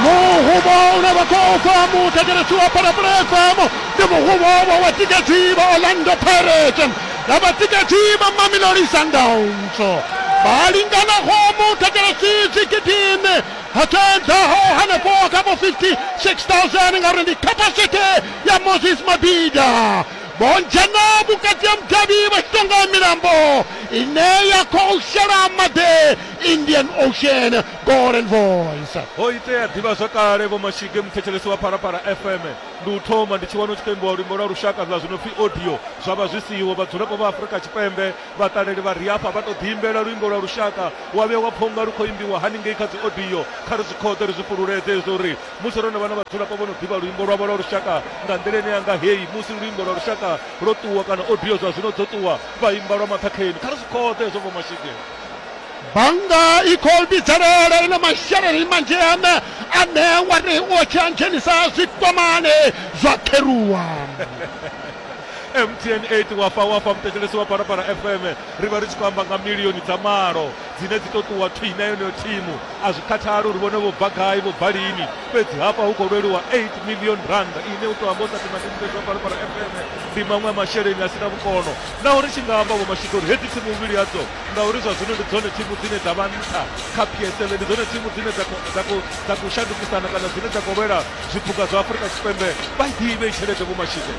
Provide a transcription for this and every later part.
muhubo une vha khou fha muthetshelesi wa phalaphala fm ndi muhubo wa vhatikedzi vha orlando pirate na vhatikedzi vha mamelodi sundowns vha linganaho muthetshelesi dzigidini hatedzaho hanefho kha vho 56000 ngauri ndi capacity ya moses mabida vho dzhena vhukati ha mudavhi vha tshi tonga milambo ine ya khou shela maḓi indian ocean golden voice ho itea ḓivha zwakale vho mashige muthetshelesi wa phalaphala fm ndi u thoma ndi tshi wana u tshi khou imbiwa luimbo lwa lushaka zwa zwino pfi audio zwa vha zwi siho vhadzulapo vha afurika tshipembe vhaṱaleli vha ri afha vha tou ḓiimbela luimbo lwa lushaka wa vhuya wa pfha unga lu khou imbiwa haningei kha dzi audio kha ri zwi khoḓe ri zwi fhululeze zwo uri musi ro no vha na vhadzulapo vho no ḓivha luimbo lwavho lwa lushaka nga nḓila ine yanga heyi musi luimbo lwa lushaka lwo ṱuwa kana audio zwa zwino dzo ṱuwa vha imba lwa maṱhakheni kha ri zwi khoḓe zwo vho mashige bannga i khou vhidzelela ine masheleni manzhi ane ane wa ri u tshi a dzhenisa zwikwamani zwa kheruwa mtn 8 wafa wafa muthetshelesi wa parapara fm ri vha ri tshi khou amba nga milioni dza malo dzine dzi tou ṱuwa thwi na yeneyo thimu a zwi khathali uri vhone vho bva gai vho bva lini fhedzi hafha hu khou lweliwa 8 million rand ine u tou amba u sa thoma ndi muthetshelesi wa parapara fm ndi maṅwe masheleni a si na vhukono Naho ri tshi nga amba, Vhomashudu, uri hedzi thimu mbili hadzo, ngauri zwa zwino ndi dzone thimu dzine dza vha nṱha kha PSL, ndi dzone thimu dzine dza khou dza khou dza khou shandukisana kana dzine dza khou lwela zwiphuga zwa Afrika Tshipembe, vha i ḓivhe i tshelede, Vho Mashike.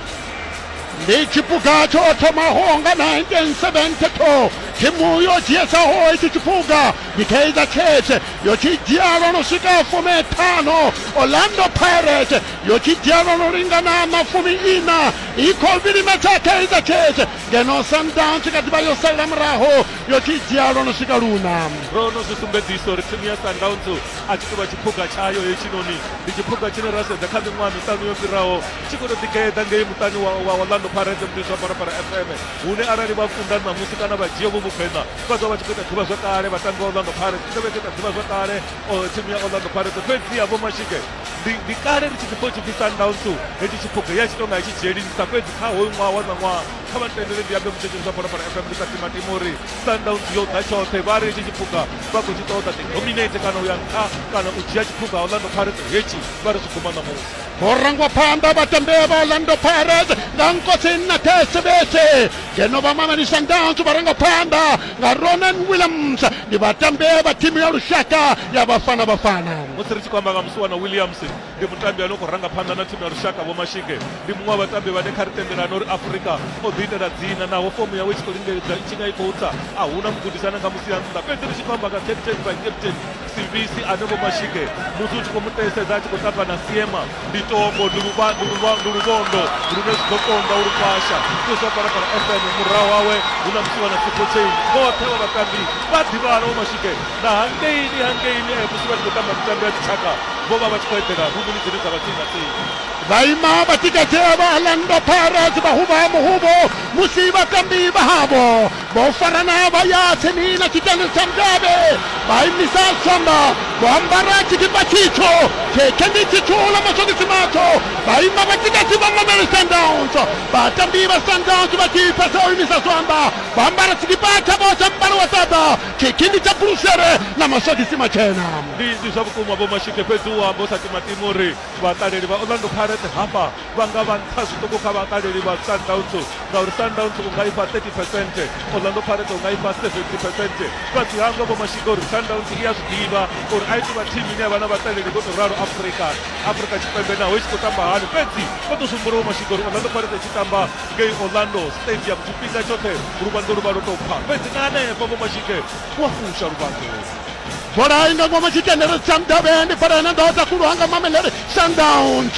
Ndi tshiphuga tsho thomaho nga 1972. Thimu yo dzhiesaho hetshi tshiphuga ndi Kaizer Chiefs, yo tshi dzhia lwo no swika fumi ṱhanu. Orlando Pirates yo tshi dzhia lwo no lingana na fumi iṋa. i khou vhilimedza kaizer chiefs ngeno sundowns kha ḓivha yo salela muraho yo tshi dzhia lwo no swika luna ro no zwi sumbedzisa uri thimu ya sundowns a tshi tou vha tshiphuga tshayo hetshinoni ndi tshiphuga tshine ra sedza kha miṅwaha miṱanu yo fhiraho tshi khou tou ḓigeḓa ngei muṱani wa orlando parade muḓi zwa parapara fm hune arali vha kunda ṋamusi kana vha dzhia vho vhugwena vha ḓo vha tshi khou ita ḓivha zwakale vhatambi wa orlando parade i ḓo vha i khou ita ḓivha zwakale thimu ya orlando parade fhedziha vho mashike ndi ndi kale ndi tshi ḓi tshi ḓisa ndawu nṱu hetshi tshiphuga ya tshi tou nga tshi dzhielisa fhedzi kha hoyu ṅwaha wa ṋaṅwaha kha vha tendele ndi ambe mutshetsheli zwa bola fana fm ndi sa timatima uri sundowns yo ḓa tshoṱhe vha ri hetshi tshiphuga vha khou tshi ṱoḓa ḓi dominate kana u ya nṱha kana u dzhia tshiphuga orlando pirates hetshi vha ri zwi guma ṋamusi ho rangwa phanḓa vhatambea vha orlando pirates nga nkosi nna thesevese ngeno vha mamelisa ndans vha rangwa phanḓa nga ronan williams ndi vhatambi vha thimu ya lushaka ya vhafana vhafana musi ri tshi khou amba nga musuwana williams ndi mutambi ane u khou ranga phanḓa na thimu ya lushaka vhomashige ndi muṅwe wa vhatambi vhane kha ri tendelana uri afurika o ḓiitela dzina naho fomo yawe i tshi khou lingedza i tshi nga i khou tsa a huna mugudisana nga musi a nnḓa fhedzi ri tshi khou amba nga captain vice captain Sivisi ane vho mashike musi u tshi khou mu ṱeesedza a tshi khou tamba na siema ndi tombo ndi luvhandu ndi luvhondo lune zwi ḓo konda u lufasha ndi zwa parapara fm murahu wawe hu na musiwa na sipotsei vhoṱhe vha vhatambi vha ḓivhana vho mashike na hangeini hangeini eh, musi vha tshi khou tamba mitambo ya dzitshaka vho vha vha tshi khou eḓela luvhuni dzine dza vha tsini na tsini vhaima vhatikedzela vha alandwa pharas vha huvha muhuvo musi vhatambi vha havho vho farana vha ya tsini na tshiṱani tsha mudavhe vha imisa tswamba vho ambara tshikipa tshitsho tshetshendi tshitsho ḽa maswogisi matsho vha ima vha tshikatshi vha mamele sundowns vhatambi vha sundowns vha tshi fhedza u imisa tswamba vha ambara tshikipa tshavho tsha mubalo wa ṱaḓa tshikindi tsha burushere na maswogisi matshena ndi ndi zwa vhukuma vho mashike fhedzi u amba u sa timatima uri vhaṱaleli vha orlando pirates hafha vha nga vha nṱha zwiṱuku kha vhakaleli vha Sundowns ngauri Sundowns u nga ifha 30 percent, Orlando Pirates u nga ifha 70 percent. Fhedzi hangwe Vho Mashika uri Sundowns i a zwi ḓivha uri a i tou vha thimu ine ya vha na vhaṱaleli vho tou ralo Afrika Afrika Tshipembe naho i tshi khou tamba hani. Fhedzi vho tou zwi humbula Vho Mashika uri Orlando Pirates i tshi tamba ngei Orlando Stadium tshifhinga tshoṱhe luvhanḓo lu vha lwo tou pfa. Fhedzi na hanefho Vho Mashika vho fusha luvhanḓo. Bola i nga ngomu tshitendeni tsha mudavhi ndi bola ine nda sa khuluwa nga Mamelodi Sundowns.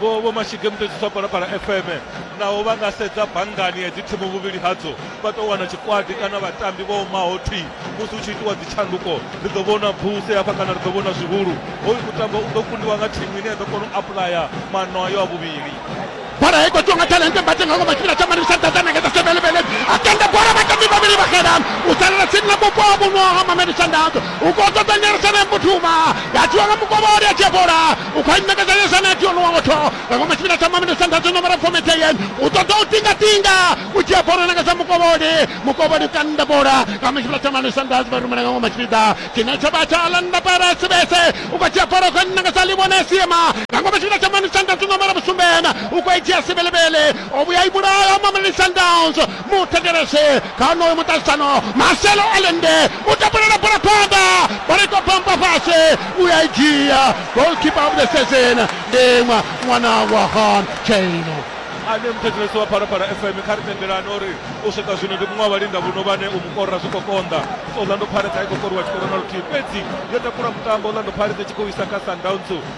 Vho Vho Mashige Mutetshiswa Palapala FM naho vha nga sedza banngani hedzi thimu vhuvhili hadzo vha tou wana tshikwadi kana vhatambi vho omaho thwi musi hu tshi itiwa dzitshanduko ri ḓo vhona bvuse hafha kana ri ḓo vhona zwihulu hoyu mutambo u ḓo kundiwa nga thimu ine ya ḓo kona u apulaya maano ayo a vhuvhili bola hei khou ṱonga talente mbate nga ngoma tshifhinga tsha mani sa ḓadza nege dza sebelebele a tenda bola vhatambi vhavhili vha xela u salela tsini na mupo wa vhuno ha mameli shandadzo u khou ṱoḓa nyeresana ya mbuthuma ya tiwa nga mukovholi a tshia bola u khou ṋekedza yo sanati ono wa motho nga ngomu tshifhinga tsha maminitsi a ntathu nomoro fomedzeye u ṱoḓa u tingatinga u dzhia bola nanga sa mukovholi mukovholi kanda bola nga mu tshifhinga tsha maminitsi a ntathu vha rumela nga ngomu tshipiḓa tshine tsha vha tsha landa para sibese u khou dzhia bola u khou nanga sa ḽivhone siema nga ngomu tshifhinga tsha maminitsi a ntathu nomoro vhusumbena u khou i dzhia sibelebele o vhuya i vhulaya maminitsi a ndowns muthetshelese kha honoyo muṱahisano maselo alende u tapulela bola phanḓa bola ito bamba fhasi u ya i dzhia golkipa of the season ndi ṅwa ṅwana wa hon chaino ane muthetshelesi wa phalaphala fm kha ri tendelane uri u swika zwino ndi muṅwe wa vhalinda vhuno vhane u mukorora zwi khou konḓa orlando pirates a i khou koriwa tshikoro na luthihi fhedzi yo takula mutambo orlando pirates i tshi khou isa kha sundowns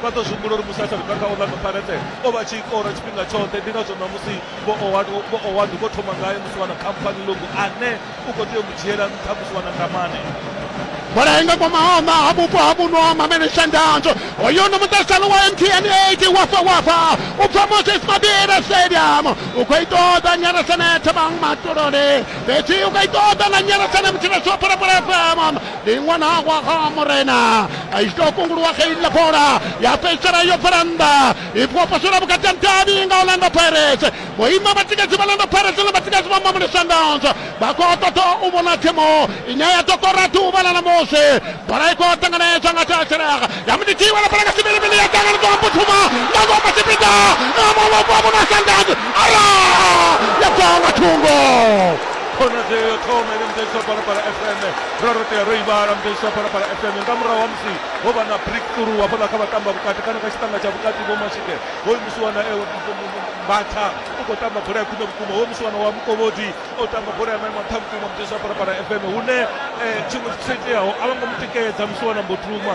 vha ḓo zwi humbula uri musi a sa luka kha orlando pirates o vha tshi ikora tshifhinga tshoṱhe ndi ngazwo ṋamusi vho owadi vho owadi vho thoma ngae musi vha na company logo ane u khou tea u mu dzhiela nṱha musi vha na ndamane bola inga kwa mahoma ha vhupo ha vhuno ha mamene shandanzo hoyo no muṱasalo wa mtn 8 wafa wafa u bva moses mabira stadium u khou itoda nyarasane thabang matolole fhedzi u khou itoda na nyarasane mutshirasopora bola fm ndi iṅwe na wa ha murena i tshi tou kunguluwa kha iḽa bola ya fhedzisela yo bvela nnḓa i fhiwa posela vhukati ha davhi nga orlando pirates vhoima vhatikedzi vha orlando pirates na vhatikedzi vha mamuli sundowns vha khou ṱoḓa u vhona thimu ine ya ḓo kora ḓuvha ḽa ṋamusi bola i khou ṱanganedzwa nga thathelaka ya muditiwa la bola nga sivhilivhili ya ṱanganedzwa nga phuthuma nga ngoma tshipiḓa na mavhofha vhona sundowns ara ya bva nga thungo khonadzeo yo thoma ine musi aiswa fhano para fm ra ro tea ro i vhala musi aiswa fhano para fm nga murahu ha musi ho vha na brick through hafhaḽa kha vhatamba vhukati kana kha tshiṱanga tsha vhukati vho mashike ho imusiwa na ewe mbatha u khou tamba bola ya khwine vhukuma ho imusiwa na wa mukovhodi o tamba bola ya maimo nṱha vhukuma musi aiswa fhano para fm hune tshiṅwe tshithu tsho iteaho a vho ngo mu tikedza musi wana mbo thuma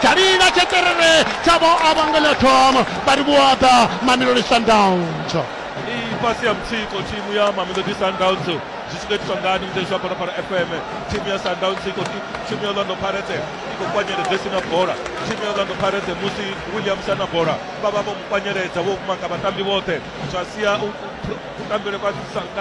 tsha lila tsheṱerere tsha vho avhangela thoma vha ri vhuaḓa mamelodi sundowns i fhasi ya mutsiko thimu ya mamelodi sundowns zwi tshi khou itiswa ngani mutsheni zwa phalaphala fm thimu ya sundowns i khou thimu ya orlando pirates i khou kwanyeledza si na bola thimu ya orlando pirates musi williams a na bola vha vha vho mu kwanyeledza vho maka vhatambi vhoṱhe zwa sia kutambele kwa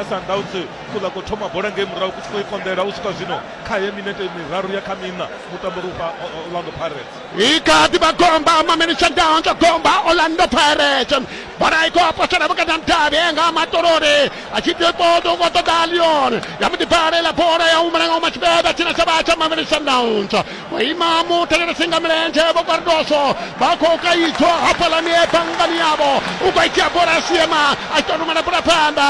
sundowns kuḽa khou thoma bola ngei murahu ku tshi khou i konḓela u swika zwino khaye minete miraru ya kha miṋa mutambo ri ufha orlando pirates i kha ḓi vha gomba maminitsa ndaho tsho gomba orlando pirates bola i khou apasela vhukati ha mudavhi nga matolori a tshi ḓi ṱoḓa u khou ṱoḓa leon ya mu ḓibvalela bola ya humela nga umatshibeda tshina tsha vha tsha maminitsa ndauntsho vho ima muthetshelesi nga milenzhe vho kwardoso vha khou kaidzwa hafhalani ebangani yavho u khou itia bola a siema a tshi tou rumela bola phanḓa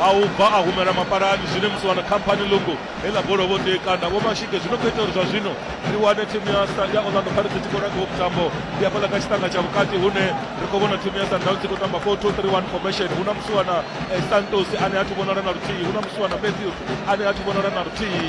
A u bva a humela mapalani zwine musi wana khamphani ḽungu he ḽa bola vho tea kanda Vho Mashige zwino khou ita uri zwa zwino ri wane thimu ya ya Orlando Pirates i tshi khou ranga vhutambo ndi hafhaḽa kha tshiṱanga tsha vhukati hune ri khou vhona thimu ya Sundowns i khou tamba 4231 formation hu na musiwana eh, Santos ane a thi vhonala na luthihi hu na musiwana Matthews ane a thi vhonala na luthihi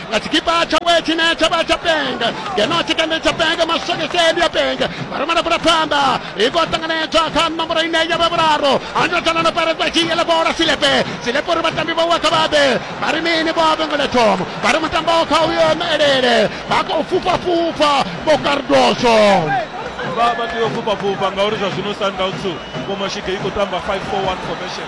nga tshikipa tshawe tshine tsha vha tsha penge ngeno tshikende tsha penge maswekeseli a penge varumela kula pfamba hi ko tanganedzwa kha nomboro ine ya vha vhuraru andotana na paredza dzhiele bola silepe silepe uri vhatambi vhauwe kha vhabe vha ri mini vho vhengele thomo vha ri mutambo kha uyo elele vha khou fhufhafhufha vho kardoso vha vha tea u fhufhafhufha ngauri zwa zwino sundowns vho mashige i khou tamba 541 formation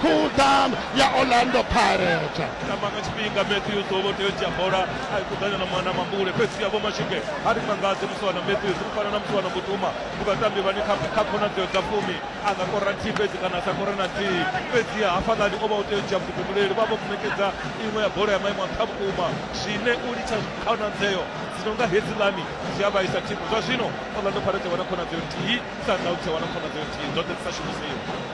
cool down ya orlando pirate tamba nga tshifhinga matthews o vho tea u dzhia bola a kuḓanya na mwana mambule fhedzi ya vho mashike a ri mangadzi musiwana matthews u fana na musiwana mutuma vhukatambi vhani kha khonadzeo dza fumi a nga kora nthihi fhedzi kana a sa kore na nthihi fhedzi ya hafhaḽani o vha u tea u dzhia vhuḓifhinduleli vha vho muṋekedza iṅwe ya bola ya maimo a nṱha vhukuma zwine u litsha khonadzeo dzi no nga hedzilani zwi a vhaisa thimu zwa zwino orlando pirate wana khonadzeo nthihi sundowns ya wana khonadzeo nthihi dzoṱhe dzi sa shumisiwa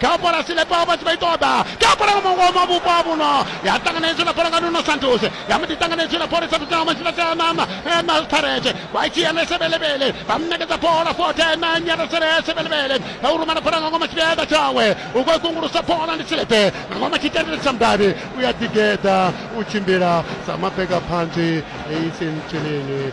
kha bola silepa vha tshi vha i ṱoḓa kha bola nga mungo ma vhupo ha vhuno ya ṱanganedzwa na bola nga nuno santos ya mbo ḓi ṱanganedzwa na bola sathu thoma tshila tsha nama na starete vha tshi ya na sebelebele vha mnekedza bola fote na nyara sere sebelebele na u rumana bola nga ngoma tshipiḓa tshawe u khou kungulusa bola ndi silepe nga ngoma tshitendele tsha mudavhi u ya ḓigeḓa u tshimbila sa mabega phantsi eisentshileni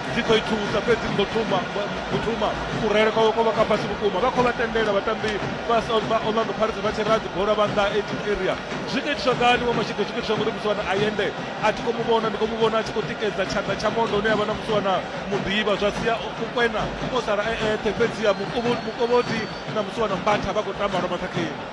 dzi khou i thusa fhedzi ndo thoma ndo thoma kurele kwawe kwa vha ka fhasi vhukuma vha khou vha tendela vhatambi vha orlando pirates vha tshi raha dzibola vha nnḓa eighteen area zwi khou itiswa ngani wa mashiḓo zwi khou itiswa ngori musiwana ayende a thi khou mu vhona ndi khou mu vhona a tshi khou tikedza tshanḓa tsha mondo une avha na musiwana muḓivha zwa sia u kwena o sala e eṱhe fhedziha mukovhoti na musiwana mbatha vha khou tamba lwa maṱhakheni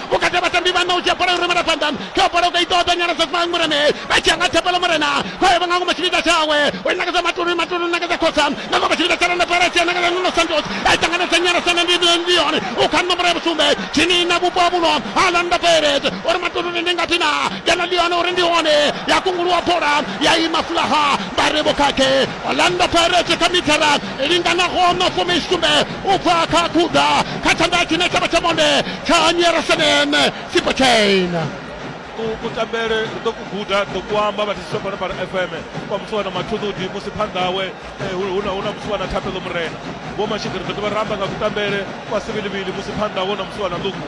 vhukati ha vhatambi vhana u dzhia bola yo rumela phanḓa kha bola u ka itoda nyala sa fang mureme vha dzhia nga thapelo murena vha yevha nga ngomu tshipiḓa tshawe u nakadza matulu matulu nakadza khosa nga ngomu tshipiḓa tsha landa pera tshia nakadza nuno santos a ṱanganedza nyala sa na ndion u kha nomboro ya vhusumbe tshini na vhupo ha vhuno ha landa peret uri matulu ndi ngathi na kana lione uri ndi hone ya kunguluwa bola ya ima fulaha vha ri vhukhakhe landa peret kha mithara linganaho no fumi sumbe u bva kha kuda kha tshanḓa tshine tshavha tsha monde tsha nyerasenen sipachain kutambele ri ḓo ku guda ri ḓo ku amba vha thisi fhano fhano fm kwa muthu wana mathuḓuḓi musi phanḓa hawe eh, hu na muthu wana thapelo murena vho mashika ri ḓo dovha ra amba nga kutambele kwa sivilivili musi phanḓa hawe na muthu wana ḽuku